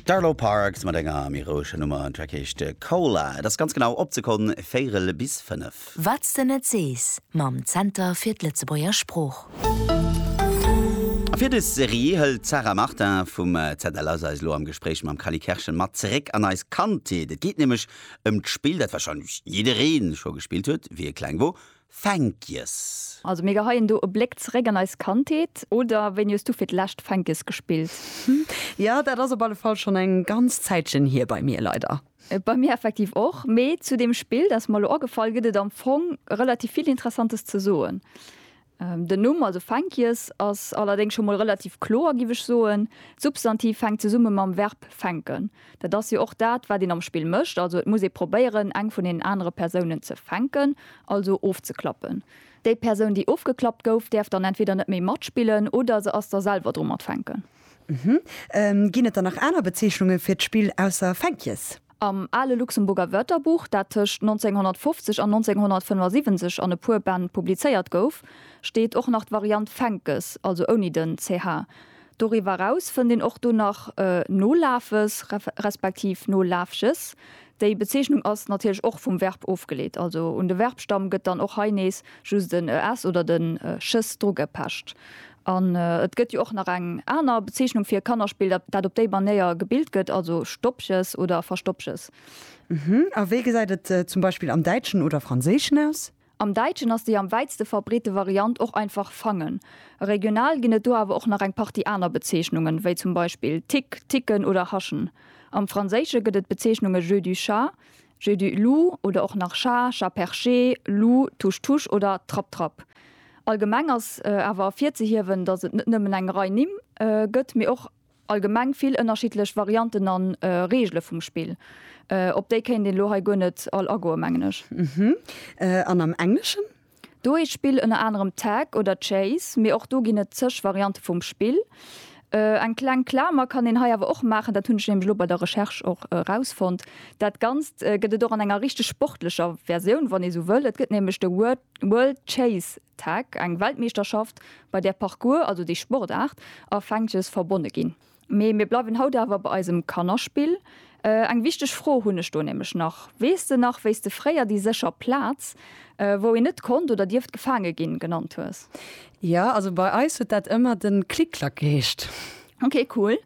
D'Arlo Parks mat enger méi roueger Nummer, den Track heescht Cola. Et ass ganz genau op d'Sekonn véierel bis fënnef. Wat's de net sees mam Zenter fir d'Lëtzebuerger Sprooch. A fir dës Serie hëlt d'Sarah Martin vum ZLS eis elo am Gespréich mam Cally Kerschen mat zeréck an eis Kandheet. Et geet nämlech ëm d'Spill, dat warscheinlech jidderee scho gespillt huet, wéi e kleng wor, Fänkjes. Also mir geheien do e Bléck zeréck an eis Kandheet, oder wéini hues du fir d'lescht Fänkjes gespillt? Jo, dat ass op alle Fall schonn eng ganz Zäitchen hier bei mir, leider. Bei mir effektiv och. Mee zu deem Spill, dat ass mer elo agefall, gëtt et am Fong relativ vill Interessantes ze soen. Den Numm, also Fänkjes, ass allerdéngs scho mol relativ kloer, giff ech soen. D'Substantiv fänkt zesumme mam Verb fänken. Dat ass jo och dat, wat een am Spill mécht. Also et muss ee probéieren, eng vun deenen anere Persounen ze fänken, also ofzeklappen. Déi Persoun, déi ofgeklappt gouf, däerf dann entweder net méi matspillen oder se ass da selwer dru mat fänken. Uhmm. Ginn et dann nach aner Bezeechnunge fir d'Spill ausser Fänkjes? Am ale Luxemburger Wörterbuch, dat tëscht 1950 an 1975 an e puer Bänn publizéiert gouf, steet och nach d'Variant Fänkes, also ouni den ch. Doriwwer eraus fënnt een och do nach Nolafes respektiv Nolafches. Déi Bezeechnung ass natierlech och vum Verb ofgeleet, also un de Verbstamm gëtt dann och hei nees just en es oder den ches drugepecht. An et gëtt jo och nach eng aner Bezeechnung fir e Kannerspill, dat op déi Manéier gebilt gëtt, also Stoppches oder Verstoppches. A wéi gesäit et zum Beispill am Däitschen oder Franséischen aus? Am Däitschen ass déi am wäitste verbreete Variant och einfach fangen. Regional ginn et do awer och nach eng Partie aner Bezeechnungen, wéi zum Beispill Tick, Ticken oder Haschen. Am Franséische gëtt et d'Bezeechnunge jeu du chat, jeu du loup oder och nach chat, chat perché, loup, touche touche oder trapp trapp. Allgemeng ass awer ervirzehiewen, datt et net nëmmen eng Rei Nimm gëtt, mee och. Allgemeng vill ënnerschiddlech Varianten an Reegele vum Spill. Op déi kéint een elo hei guer net all agoen, mengen ech. Hm, an am Engleschen? Do heescht d'Spill ënner anerem Tag oder Chase, mee och do ginn et zeg Variante vum Spill. Eng kleng Klamer kann een hei awer och maachen, dat hunn ech nämlech elo bei der Recherche och erausfonnt, Dat Ganzt gëtt et och an enger richteg sportlecher Versioun, wann ee sou wëll. Et gëtt nämlech de World Chase Tag, eng Weltmeeschterschaft bei där Parcours, also déi Sportaart, a Fänkjes verbonne ginn. Mee mir bleiwen haut awer bei eisem Kannerspill. Eng wichteg Fro hunn ech do nämlech nach, Weess de nach, wéi s de fréier déi sécher Plaz, wou een net konnt oder dierft gefaange ginn, genannt hues? Jo, also bei eis huet dat ëmmer de Klick-Klack geheescht. Ok, cool.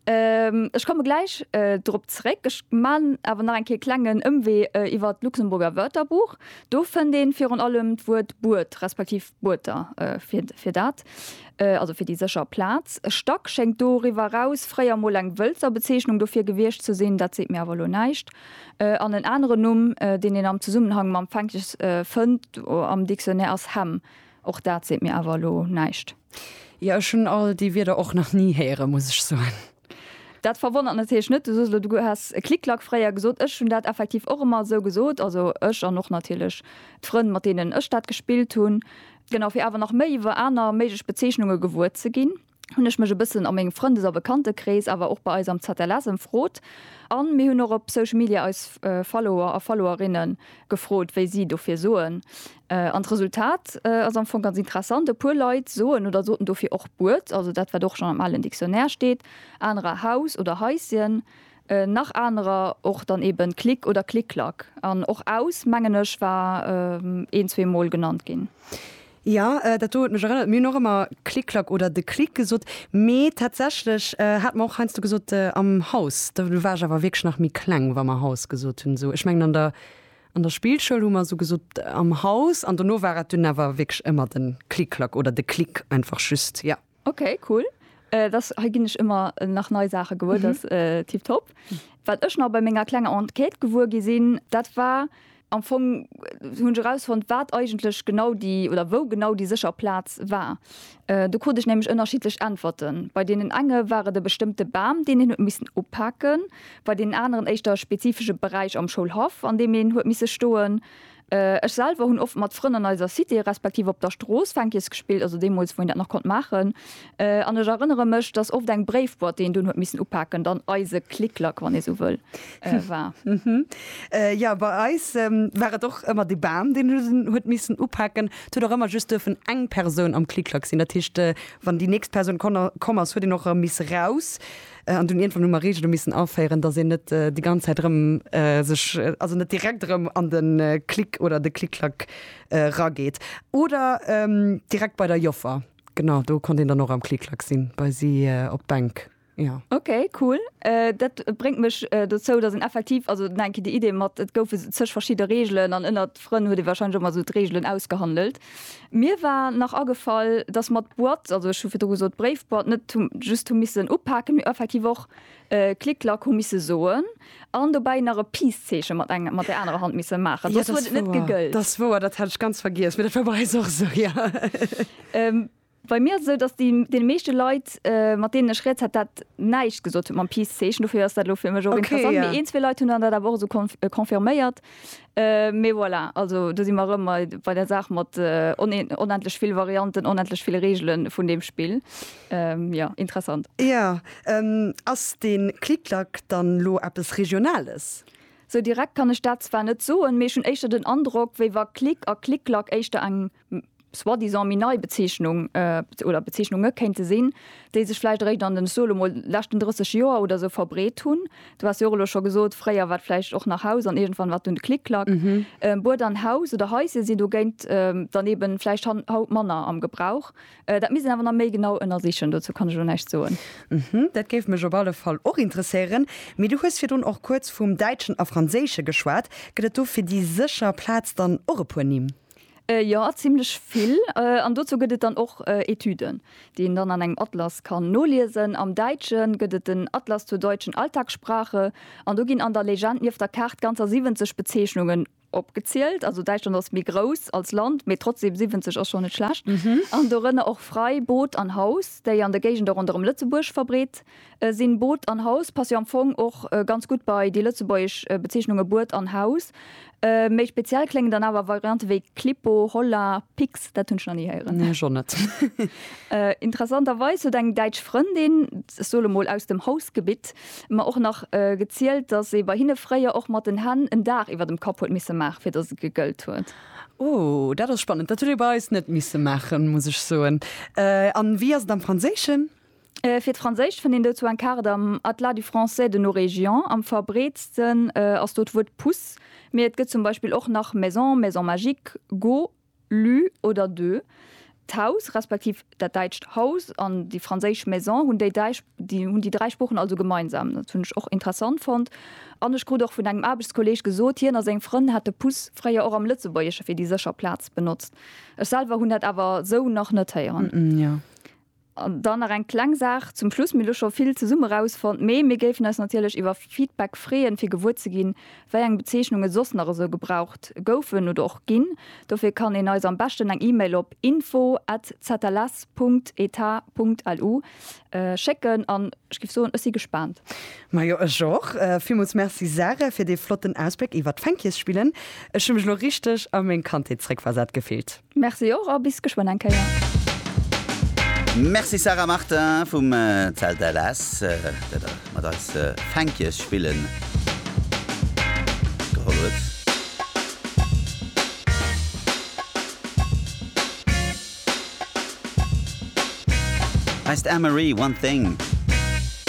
Ech komme gläich drop zeréck. Ech maan awer nach eng Kéier e klengen Ëmwee iwwert d'Luxemburger Wörterbuch. Do fënnt ee virun allem d'Wuert Buert respektiv Buerter fir dat, also fir déi sécher Plaz. Stack schéngt doriwwer eraus fréier emol eng Wëlzer Bezeechnung dofir gewiescht ze sinn, dat seet mir awer elo näischt. An en aneren Numm, deen een am Zesummenhang mam Fänkes fënnt am Dictionnaire, ass Hemm. Och dat seet mir awer elo näischt. Jo, ech hunn all déi Wierder och nach ni héieren, muss ech soen. Dat verwonnert natierlech net, Du soos elo, du häss Klick-Klack fréier gesot. Ech hunn dat effektiv och ëmmer esou gesot, also ech an och natierlech d'Frënn, mat deenen ech dat gespillt hunn. Genau, fir awer nach méi iwwer aner méiglech Bezeechnunge gewuer ze ginn, hunn ech mech e bëssen a mengem Frëndes a Bekantekrees, awer och bei eis am ZLS ëmfrot. A mir hunn och op Social Media eis Follower a Followerinne gefrot, wéi si dofir soen. An d'Resultat ass am Fong ganz interessant, e puer Leit soen oder soten dofir och Buert, also dat wat och schonn am alen Dictionnaire steet, anerer Haus oder Haischen, nach anerer och dann eben Klick oder Klick-Klack. An och Aus, mengen ech, war een, zwee Mol genannt ginn. Jo, dat do huet mech erënnert, mir hunn och ëmmer Klick-Klack oder de Klick gesot, mee tatsächlech hate mer och heiansdo gesot am Haus. Do war ech awer wierklech nach méi kleng, wa mer Haus gesot hunn. Esou, ech mengen an der. An der Spillschoul hu mer sou gesot am Haus an dono war et dunn awer wierklech ëmmer den Klick-Klack oder de Klick einfach just, ja. Ok, cool. Et ass, hei ginn ech ëmmer nach nei Saache gewuer, dat ass tiptop. Wat ech nach bei menger klenger Enquête gewuer gi sinn, dat war am Fong, hunn ech erausfonnt, wat eigentlech genau déi, oder wou genau déi sécher Plaz war. Do krut ech nämlech ënnerschiddlech Äntwerten. Bei deenen enge war et e bestëmmte Bam, deen een huet missen upaken, bei deenen aneren éischter e spezifesche Beräich am Schoulhaff, an deem een huet misse stoen. Ech selwer hunn oft mat Frënn an eiser Cité respektiv op der Strooss Fänkies gespillt, also deemools, wou een dat nach konnt maachen. An ech erënnere mech, dass oft eng Bréifboîte, déi een dunn huet missen upaken, dann eise Click-Clack, wann ee sou wëll, war. Jo, bei eis war et och ëmmer de Bam, deen huet missen upaken. Et huet och ëmmer just duerfen eng Persoun am Klick-Klack sinn. Dat heescht, wann déi nächst Persoun komm ass, huet een och erëm misse raus. An dunn iergendwann hu mer Reegele missen aféieren, dass een net déi ganz Zäit erëm sech, also net direkt erëm an de Klick oder de Klick-Klack erageet. Oder direkt bei der Joffer, genau, do konnt een dann och am Klick-Klack sinn, bei si op d'Bänk. Ja. Ok, cool. Dat bréngt mech dozou, datt een effektiv, also nach eng Kéier déi Idee mat, et goufe zeg verschidde Reegelen an ënnert Frënn huet ee wahrscheinlech och mol esou d'Reegelen ausgehandelt. Mir war nach agefall, datt mer d'Boîte, also ech hu virdru gesot d'Bréifboîte, net hu just hu missen upaken, mee effektiv och Klick Klack hu misse soen an dobäi nach e Peace-Zeeche mat eng, mat där anerer Hand misse maachen, soss huet et net gegëllt. Dat ass wouer, dat hat ech ganz vergiess, mee dat war bei eis och esou, jo. Bei mir ass et esou, datt deene meeschte Leit, mat deenen ech rieds, hat dat näischt gesot huet mam Peace-Zeechen. Dofir ass dat elo fir mech och interessant. Mee een, zwee Leit hunn dann dat awer och esou confirméiert. Mee voilà, also do si mer erëm bei der Saach mat onendlech vill Varianten, onendlech vill Reegele vun deem Spill. Jo, interessant. Jo, ass dee Klik-Klak dann elo eppes Regionales? Esou direkt kann ech dat zwar net soen, mee ech hunn éischter den Androck, wéi wa Klik a Klik-Klak éischter eng. soi-disant méi nei Bezeechnung oder Bezeechnunge kéinte sinn, déi sech vläicht eréischt an den, ech soe lo mol, leschten 30 Joer oder esou verbreet hunn. Du has jo och elo scho gesot, fréier war et vläicht och nach Haus an iergendwann war et dunn de Klick-Klack. Bued an Haus oder Haisje sinn dogéint dann eeben vläicht haut manner am Gebrauch. Dat misst een awer nach méi genau ënnersichen, dozou kann ech elo näischt soen. Dat géif mech op alle Fall och interesséieren. Mee du hues virdrun och kuerz vum Däitschen a Franséische geschwat. Gëtt et do fir déi sécher Plaz dann och e puer Nimm? Jo, zimmlech vill. An dozou gëtt et dann och Etüden, déi een dann an engem Atlas kann noliesen. Am Däitsche gëtt et den Atlas zur deutschen Alltagssprache an do ginn an der Legend nieft der Kaart ganzer 70 Bezeechnungen opgezielt. Also Däitschland ass méi grouss als Land, mee trotzdeem 70 ass schonn net schlecht. An dorënner och Frei, Boot an Haus, déi an de Géigende ronderëm Lëtzebuerg verbreet sinn Boot an Haus, passe jo am Fong och ganz gutt bei déi lëtzebuergesch Bezeechnunge Buet an Haus. Méi speziell kléngen dann awer Variante wéi Klippo, Holla, Pix, dat hunn ech nach ni héieren. Nee, ech och net. Interessanterweis huet eng däitsch Frëndin, ech soe mol aus dem Hausgebitt, mer och nach gezielt, dass ee bei hinne fréier och mat den Hänn en Daach iwwer dem Kapp huet misse maachen, fir dass et gegëllt huet. Oh, dat ass spannend. Dat huet ee bei eis net misse maachen, muss ech soen. A wéi ass et am Franséischen? Fir d'Franséischt fënnt een dozou eng Kaart am Atlas du français de nos régions. Am verbreetsten ass do d'Wuert Puss, mee et gëtt zum Beispill och nach maison, maison magique, go, lu oder de. D'Haus respektiv dat däitscht Haus an déi franséisch maison hunn déi däi hunn déi dräi Sproochen also gemeinsam. Dat hunn ech och interessant fonnt. An ech krut och vun engem Aarbechtskolleeg gesot, hien a seng Frënn hätte Puss fréier och am Lëtzebuergesche fir déi sécher Plaz benotzt. Ech selwer hunn dat awer esou nach net héieren. An dann nach eng kleng Saach zum Schluss, Mir hu scho vill zesumme rausfonnt, mee mir géifen eis natierlech iwwer Feedback freeën, fir gewuer ze ginn, wéi eng Bezeechnunge soss nach esou gebraucht goufen oder och ginn. Dofir kann een eis am beschten eng E-Mail op info at zls Punkt etat Punkt lu schécken. An ech géif soen, ech si gespaant. Majo, ech och. Villmools Merci, Sarah, fir dee flotten Ausbléck iwwert d'Fänkjesspillen. Ech hu mech elo richteg a meng Kandheet zréckversat gefillt. Merci och a bis geschwënn eng Kéier. Merci Sarah Martin vum Zelt LS dat der mat eis Fänkies spillen geholl huet. Heist Anne-Marie, One Thing.